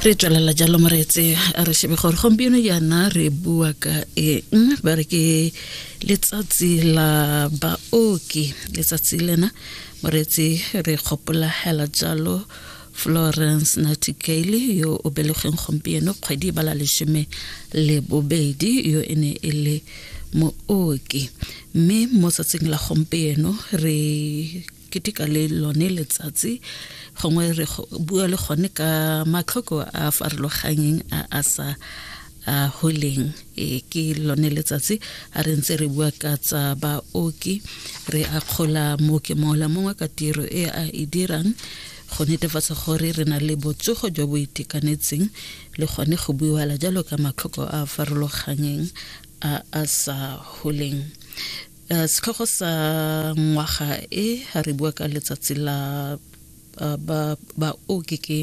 re tswelela jalo moretse a re shebe gore gompieno yana re bua ka eng ba re ke letsatsi la baoki letsatsi lena moretse re gopola hela jalo florence nightingale yo o belegeng gompieno kgwedi bala lesome le bobedi yo e ne e le mooki mme mo tsatsing la gompieno re keteka le lone letsatsi gongwe re bua le gone ka matlhoko a farologanyeng a a sa a holeng e ke lone letsatsi a re ntse re bua ka tsa baoki re akgola mooki mongwe le mongwe ka tiro e a e dirang go netefatsa gore re na le botsogo jo bo itekanetseng le gone go buiwala jalo ka matlhoko a a farologanyeng a a sa holeng Eh, setlhogo sa ngwaga e ga re bua ka letsatsi la eh, baoki ke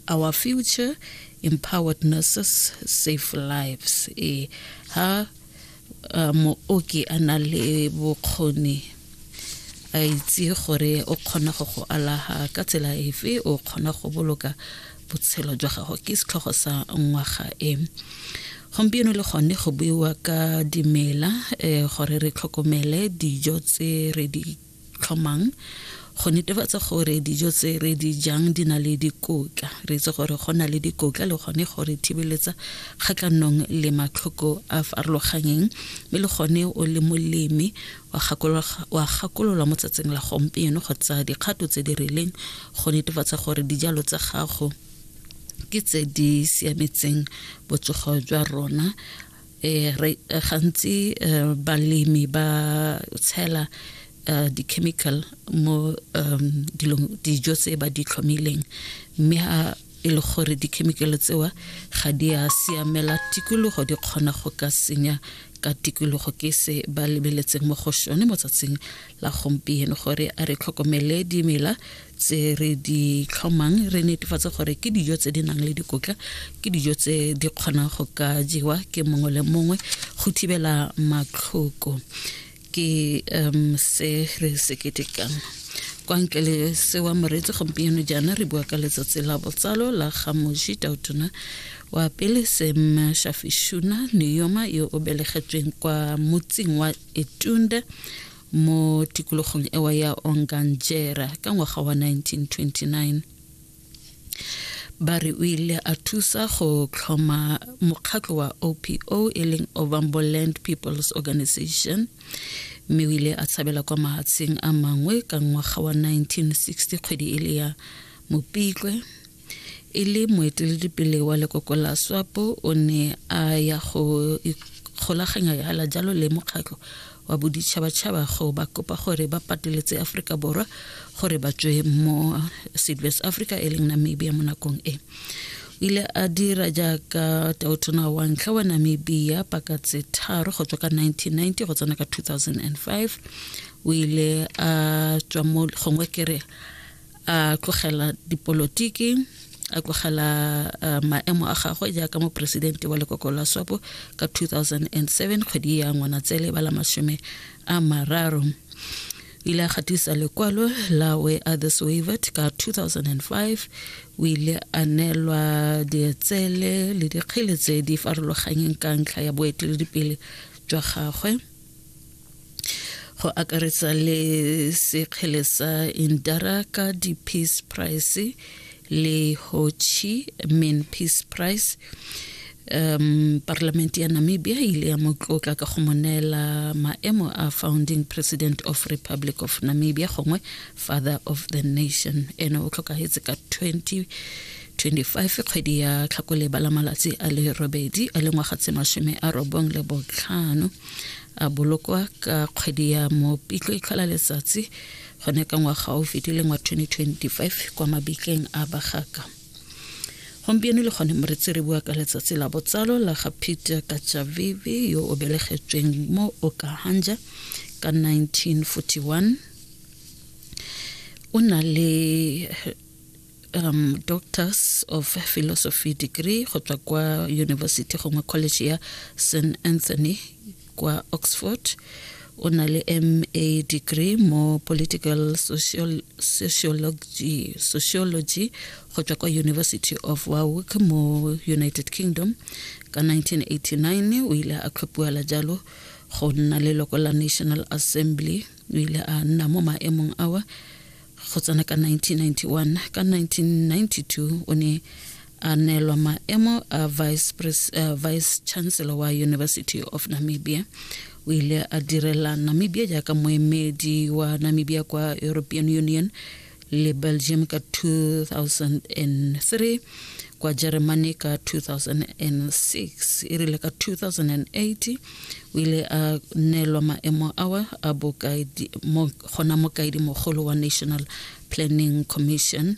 our future empowered nurses safe lives e ha eh, mooki a na le bokgoni a itse gore o kgona go go alaga ka tsela efe o kgona go boloka botshelo jwa gago ke setlhogo sa ngwaga e gompieno le gone go buiwa ka dimela um gore re tlhokomele dijo tse re di tlhomang go netefatsa gore dijo tse re di jang di na le dikotla re itse gore go na le dikotla le gone gore thibeletsa kgatlhanong le matlhoko a farologanyeng mme le gone o le molemi wa gakolola mo tsatsing la gompieno go tsaya dikgato tse di rileng go netefatsa gore dijalo tsa gago ke tse di siametseng botsogo jwa rona Eh, eh, gantsi eh, balemi ba tshela di-chemical mo um, dijo tse ba di tlhomileng mme e le gore dikhemikale tsewa ga di a siamela tikologo di kgona go ka senya ka tikologo ke se ba lebeletseng mo go sone mo tsatsing la gompieno gore a re tlhokomele dimela tse re di tlhomang re netefatse gore ke dijo tse di nang le dikotla ke dijo tse di kgonang go ka jewa ke mongwe le mongwe go thibela matlhoko ke um se re se ketekang kwa ntle le sewa moreetsi gompieno jaana re bua ka letsatsi la botsalo la ga moji tautona wa pele sem shafishuna neyoma yo o belegetsweng kwa motseng wa etunda mo tikologong ewa ya onganjera ka ngwaga wa 1929 ba re o ile a thusa go tlhoma mokgatlho wa opo e leng ovambo land peoples organization mme o ile a tshabela kwa mahatsheng a mangwe ka ngwaga wa 1960 kgwedi e le ya mopitlwe e le moeteledipele wa lekoko la swapo o ne a ya go ikgolaganya jalo le mokgatlho wa boditšhabatšhaba go ba kopa gore ba pateletse aforika borwa gore ba tswe mo west africa e leng namibia mo nakong e o ile a dira jaaka taotona wa ntlha wa namibia paka tse tharo go tswa ka 1990 go tsena ka 2005 o ile a tswa mo gongwe kere a tlogela dipolotiki a tlogela uh, maemo a gagwe jaaka moporesidente wa lekoko la swapo ka 2007 kgwedi ya ngwanatsele ba la masome a mararo ile a gatisa lekwalo la we others wavet ka 2005 o ile a neelwa dietsele le dikgele tse di farologanyeng ka ntlha ya boeteledipele jwa gagwe go akaretsa le sekgele sa indara ka di-peace price le hochi min peace price um parlamente ya namibia e ile ya mo tlotla ka go mo neela maemo a founding president of republic of namibia gongwe father of the nation ene o tlhokagetse ka 20 25 kgwedi ya tlhakole ba la malatsi a le robedi a le ngwaga tse masome a robong le botlhano a bolokwa ka kgwedi ya mopitlo e tlhola letsatsi gone ka ngwaga o fetileng wa 2025 kwa mabitleng a bagaka gompieno le gone moretsi re bua ka letsatsi la botsalo la ga peter kajavivi yo o belegetsweng mo okahanja ka 1941 o na le um, doctors of philosophy degree go tswa kwa university gongwe college ya st anthony kwa oxford o na le ma degree mo political social, sociology, sociology go tswa kwa university of warwick mo united kingdom ka 1989 o ile a tlhophiwela jalo go nna leloko la national assembly o ile a nna mo maemong awa go tsena ka 1991 ka 1992 o ne a neelwa maemo a vice, pres, uh, vice chancellor wa university of namibia o ile a direla namibia jaaka moemedi wa namibia kwa european union le belgium ka 2003 kwa germany ka 2006 e rile ka 2008 o ile a neelwa maemo awa a bokaedi mo gona mokaedi mogolo wa national planning commission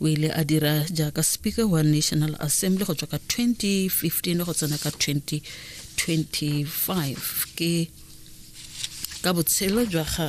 o ile a dira jaaka speaker wa national assembly go tswa ka 2015 go tsena ka 2025 ke ka botshelo jwa ga